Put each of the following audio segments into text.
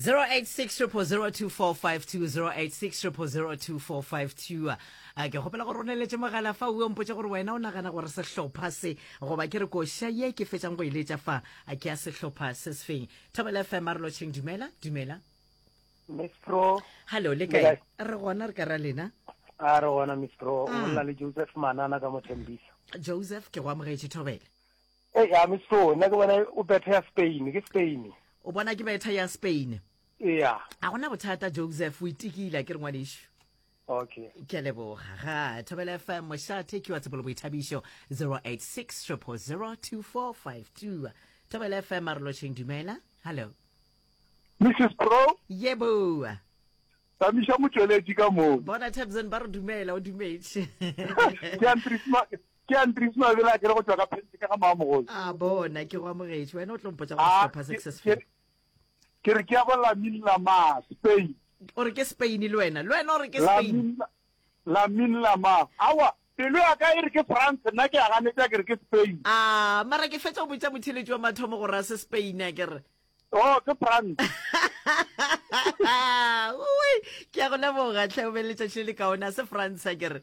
0860002452 a ke gopela gore o neletse mogala fa o mpotse gore wena o nagana gore sehlopha se goba ke re koša ye ke fetsang go e letša fa a ke ya sehlopha se sefeng thobela fm a re lotšheng dumela dumela mistro hallo le kae re gona re ka ra lena a re gona mistro o mm. bolela le joseph manana ka mothembisa joseph ke go amogetše thobele Ee, I'm sure. Nna ke bona o betha ya Spain. Ke Spain. O bona ke betha ya Spain. Ea. A gona bothata Joseph, o itikile a ke re ngwanešu. Okay. Ke a leboga. Ga Thobela FM Moshathe ke wa Tshepolo Boithabišo 086 000 2452. Thobela FM a re lošeng dumela. Hello. Mrs. Pro. Ye boa. Tamiša motšweletši ka moo. Bona Tabson ba re dumela o dumetše. Ke a Ke Andries Mabele a kere go tšwa ka Phentse ka ga Maamogolo. A bona ke go amogetše. Wena o tlo mpotša go ah, sehlopha se se se feng. Ke re ke ya go Lamin Lama, Spain. O re ke Spain le wena. Le wena o re ke Spain. Lamin Lama. Awa, pelo ya ka e re ke France, nna ke a ganetša ke re ke Spain. A ah, mara ke fetša go botša motheletši wa mathomo gore a se Spain a kere. Oh, ke France. Ui, ke ya go leboga tlhe o be letšatši le le kaone a se France a kere.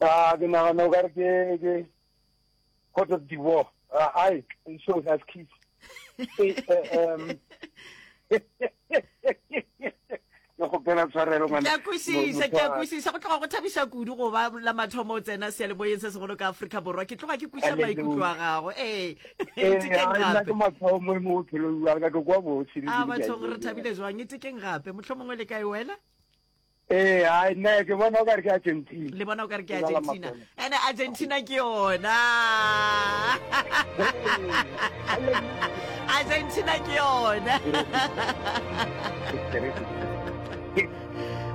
A ke nagana o ka re ke ke Cote of Divoire. Uh, I it shows as kiss. um, ke kgopela tshwarelo ke a kwešiša ke a kwešiša go tloga go thabiša kudu go ba la mathomo o tsena sealemoyeng se segolo ka aforika borwa ke tloga ke kweša maikutlo a gago ee etekeng gape a bathong re thabile jwang etekeng gape motlho mongwe le kae wena Ee, hai, nna ke bona o ka re ke Argentina. Le bona o ka re ke Argentina. Ene Argentina ke yona. Argentina ke yona.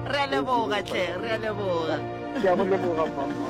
Re a leboga tle, re a leboga. Ke a go leboga mama.